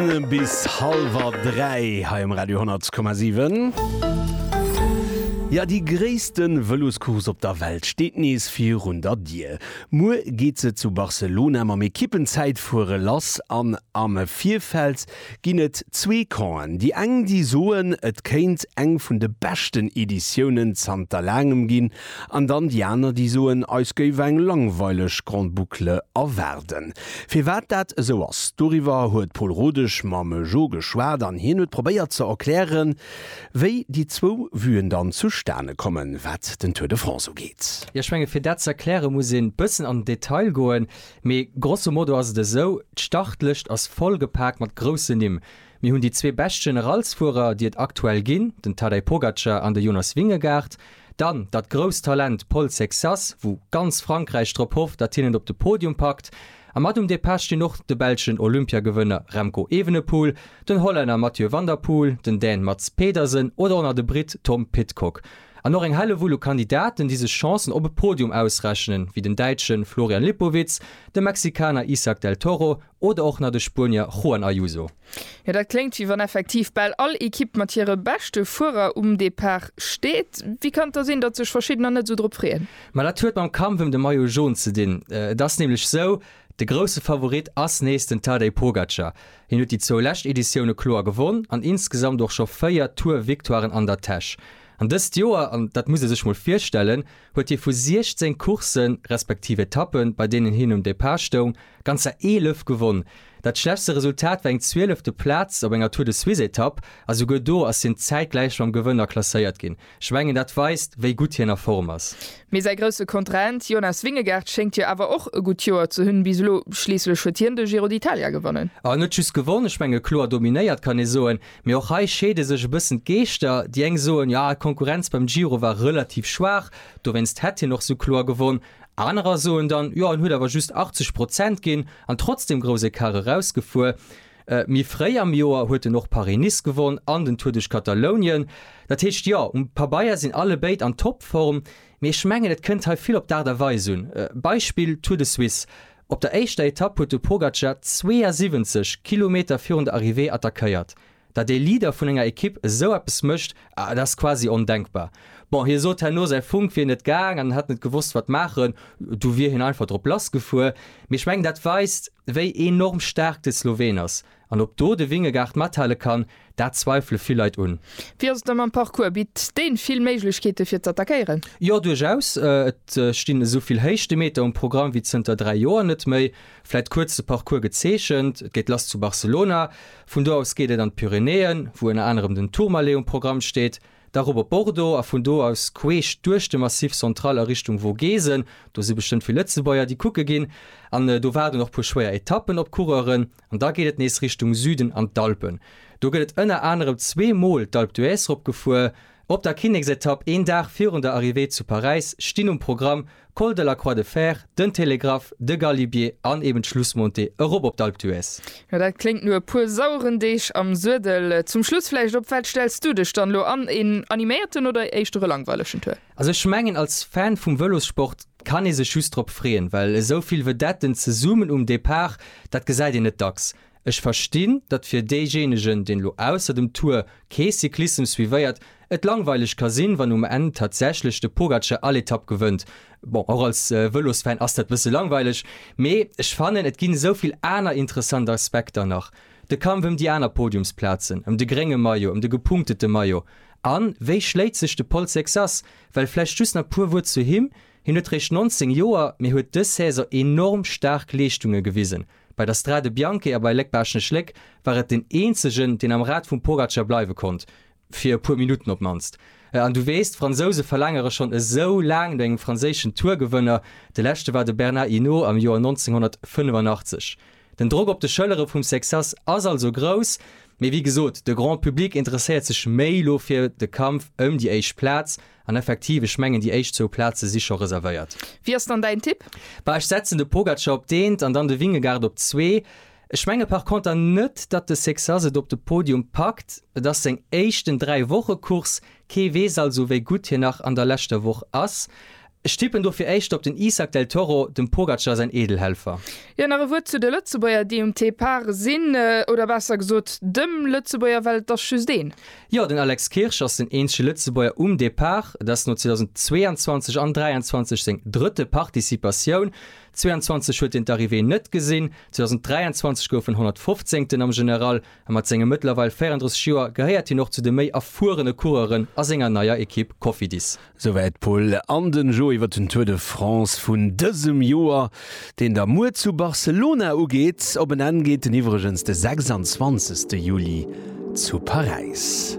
Bis hallwer 3 hei um Radio 10,7. Jo, déi gréisste Vëloscourse op der Welt steet nees virun der Dier. Muer geet se zu Barcelona mam Ekippenzäitfuere lass an am Virfeld ginn et zwee Campen. Déi eng, déi soen, et kéint eng vun de beschten Editiounen zanter laangem ginn, An dann déi aner, déi soen, eis géif eng langweileg Grande Boucle erwaarden. Firwat dat esou ass, doriwwer huet d'Paul Rodesch mam Jo geschwat an hien huet probéiert ze erklären, wéi déi zwou Vuen dann zustane kommen, wat den Tour de France ugeet. Jo, ech menge fir dat ze erkläre muss ee bëssen an den Detail goen, mee grosso modo ass et esou, d'Startlëscht ass voll gepaakt mat groussen Nimm. Mir hunn déi zwee bescht Generalsfuerer, déi et aktuell ginn, den Tadej Pogacar an de Jonas Vingegaard, Dann datt grousst Talent Paul Sexas, wou ganz Frankräich drop hofft, datt hien et op de Podium packt. A mat um Depart stinn och de belschen Olympiagewënner Remco Evenepoel, den Hollänner Mathieu van der Poel, den Dän Mads Pedersen oder och nach de Britt Tom Pidcock. An och eng Hellewull u Kandidaten, déi sech Chancen op e Podium ausrechnen, wéi den Däitschen Florian Lipowitz, de Mexikaner Isak del Toro Oder och nach de Spuenier Juan Ayuso. Jo, dat kléngt wéi wann effektiv bal all Ekipp mat hire beschte Fuerer um Depart steet. Wéi kann et da sinn, datt sech verschiddener net esou drop freeën? Ma dat huet mam Kampf ëm de Maillot Jaune ze dinn. Et ass nämlech esou, de grousse Favorit ass nees den Tadej Pogacar. Hien huet déi zwou lescht Editioune kloer gewonn an insgesamt och scho véier Tour-Victoiren an der Täsch. An dëst Joer, an dat muss ee sech mol virstellen, huet hie vu 16 Courssen, respektiv Etappen, bei deenen hien um Depart stoung, ganzer 11 gewonn. Dat schlechtste Resultat war eng zwielefte Plaz op enger Tour-de-Suisse-Etapp, a souguer do ass hien zäitgläich mam Gewënner klasséiert ginn. Ech mengen, dat weist, wéi gutt hien a Form ass. Mee säi grousse Kontrahent Jonas Vingegaard schéngt jo awer och e gutt Joer ze hunn bis elo. Schliisslech huet hien de Giro d'Italia gewonnen. En huet just gewonn, ech menge kloer dominéiert, kann ee soen. Mee och hei scheede sech e bëssen d'Geeschter, déi eng soen, jo d'Konkurrenz beim Giro war relativ schwaach, dowéinst hätt hien och sou kloer gewonn. Anerer soen dann, jo en huet awer just 80 Prozent ginn an trotzdeem grouss Ecart erausgefuer. Méi fréi am Joer huet en och Paris-Nice gewonn an den Tour duerch Katalounien. Dat heescht, jo um Pabeier sinn allebéid an Topform, mee ech mengen et kënnt hei vill op d'Aart a Weis un. Beispill Tour de Suisse. Op der éischter Etapp huet de Pogacar 72 Kilometer virun der Arrivée attackéiert. Datt ee Leader vun enger Ekipp esou eppes mécht, dat ass quasi ondenkbar. Bon, hie sot herno, säi Funk wier net gaang an en hätt net gewosst, wat maachen. Du wier hien einfach drop lassgefuer. Mee ech mengen, dat weist, wéi enorm staark de Sloween ass. An ob do de Wingegaard mathale kann, dat zweifele vill Leit un. Wéi ass et da mam Parcours? Bitt deen vill Méiglechkeeten fir z'attackéieren? Jo, duerchaus. Et stinn esou vill Héichtemeter um Programm wéi zënter 3 Joer net méi. Vläit kuerz de Parcours gezeechent, et geet lass zu Barcelona, vun do aus geet et an d'Pyrenäen, wou ënner anerem den Tourmalet um Programm steet, da rop op Bordeaux a vun do aus queesch duerch de Massif Central a Richtung Vogesen. Do si bestëmmt vill Lëtzebuerger, déi kucke ginn. An do waarden och puer schwéier Etappen op d'Coureuren. An da geet et nees Richtung Süden an d'Alpen. Do gëtt et ënner anerem zwee Mol d'Alpe d'Huez ropgefuer. Op der Kinneksetapp, een Dag virun der Arrivée zu Paräis, stinn um Programm, Col de la Croix de Fer, den Télégraphe, de Galibier an eben d'Schlussmontée erop op d'Alpe d'Huez. Jo, dat kléngt no e puer saueren Deeg am Suedel. Zum Schluss vläicht, op wat stells du dech dann elo an, een animéierten oder éischter e langweilegen Tour? Also ech mengen als Fan vum Vëlossport kann ee sech just drop freeën, well esou vill Vedetten zesummen um Depart, dat gesäit een net dacks. Ech verstinn, datt fir deejéinegen, deen elo ausser dem Tour kee Cyclissem suivéiert, et langweileg ka sinn, wann um Enn tatsächlech de Pogacar all Etapp gewënnt. Bon, och als Vëlosfan ass dat bësse langweileg, mee ech fannen, et ginn esou vill aner interessant Aspekter nach, de Kampf ëm déi aner Podiumsplazen, ëm de grénge Maillot, ëm de gepunktete Maillot. An wéi schléit sech de Paul Sexas? Well vläicht just nach puer Wuert zu him, Hien huet réischt 19 Joer, mee huet dës Saison enorm staark Leeschtunge gewisen. Bei der Strade Bianche a bei Léck-Baaschtnech-Léck war et den eenzegen, deen am Rad vum Pogacar bleiwe konnt, fir e puer Minutten op d'mannst. An du weess, d'Fransouse verlaangere schonn esou laang no engem franséischen Tour-Gewënner. De leschte war de Bernard Hinault am Joer 1985. Den Drock op de Schëllere vum Sexas ass also grouss, mee wéi gesot, de Grand Public interesséiert sech méi elo fir de Kampf ëm déi éischt Plaz. An effektiv, ech mengen, déi éischt zwou Plaze si scho reservéiert. Wie ass dann däin Tipp? Bah, ech setzen de Pogacar op d'eent an dann de Vingegaard op zwee. Ech menge par conter net, datt de Sexas et op de Podium packt. Et ass seng éischten Dräi-Woche-Course, kee weess also, wéi gutt hien nach an der leschter Woch ass. Ech tippen dofir éischter op den Isak del Toro, dem Pogacar säin Eedelhelfer. Jo, nach e Wuert zu de Lëtzebuerger, déi um Depart sinn. Oder besser gesot, dem Lëtzebuerger, well et ass just een. Jo, den Alex Kirsch ass den eenzege Lëtzebuerger um Depart. Et ass no 2022 an 23 seng drëtte Participatioun. 22 huet hien d'Arrivée net gesinn, 2023 gouf en 115. am General. a mat senge mëttlerweil 34 Joer gehéiert hien och zu de méi erfuerene Coureuren a senger neier Ekipp Cofidis. Souwäit d'Pol an den Joe iwwer den Tour de France vun dësem Joer, deen da muer zu Barcelona ugeet. Op en Enn geet en iwwregens de 26 Juli zu Paräis.